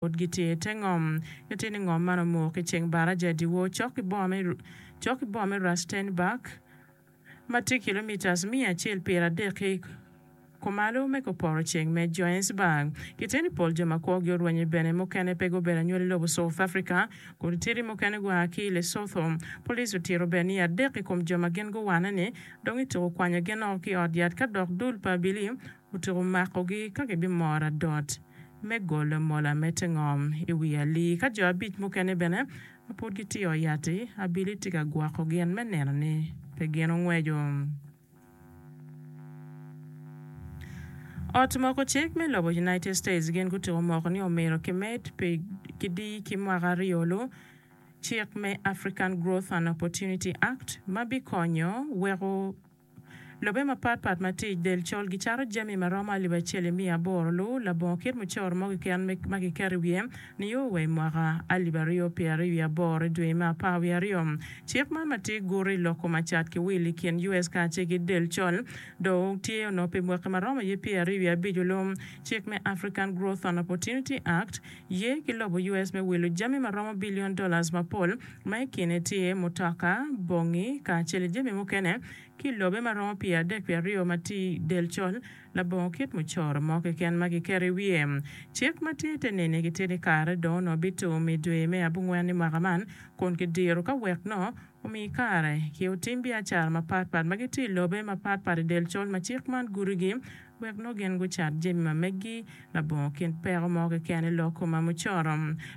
Pud gitye i te ngom. Nyo tye ni ngom man omuko ki ceng baraja dyewor cok ki boma cok ki boma me Rastenburg, ma tye kilomitas miya acel pyera adek ki kumalo me koporo ceng me Johannesburg. Kitye ni pol jo ma kwogi orwenyo bene mukene pe gubedo anywali lobo South Africa. Kutitiri mukene gua ki i Lesotho. Police otito bene ni adek i kom jo ma gin guwanne-ni dong ituko kwanyo gin oko ki i ot yat ka dok dul pa abili Otyeko makogi ka gibimoro adot me golo mola me te ngom i wi alii. Ka jo abic mukene bene ma pud gitye i ot yat-ti, abili tye ka gwoko gin me neno ni pe gin ongweco Ot Moko Cik me lobo United States gin gutyeko moko ni omyero kimed pi kidii ki mwaka aryo lu cik me African Growth and Opportunity Act ma bikonyo weko Lobe mapat pat ma tic del col gicato jami ma romo alip acel i miya aboro lu labongo kit mucoro mo keken me ma kiketo i wiye nio wa i mwaka alip aryo pye aryo wiye aboro i dwe me apar wiye aryo. Cik man ma tye guto i loko macat ki wil i kin US kacel ki del col dong tye onongo pi mwaki ma romo ye pye aryo wiye abico lu. Cik me African Growth and Opportunity Act ye ki lobo US me wilo jami ma romo billion dollars mapol ma i kine tye mutoka, bongi, kacel ki jami mukene, ki lobe ma romo pye adek pye aryo ma tye i del col, labongo kit mucoro mo keken ma kiketo i wiye. Cik ma tye te neni gitye ni kare dong onongo bitum i dwe me abongwen i mwaka man kun kidiro ka wek nongo omi kare ki otim biacara mapatpat ma gitye i lobe mapatpat i del col ma cik man gudogi Wek nongo gin gucat jami ma meggi labongo kin peko mo keken i lok ma mucoro.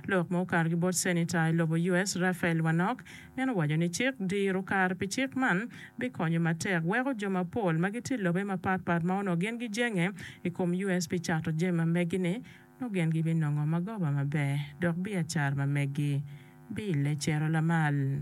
Lok ma okato ki bot Cenita i lobo US Raphael Warnock, en owaco ni cik diro kare pi cik man bikonyo matek weko jo mapol ma gitye i lobe mapat pat ma onongo gin gijenge i kom US pi cato jami ma meggi ni nongo gin gibinongo magoba maber dok biacara ma meggi bilecero lamal.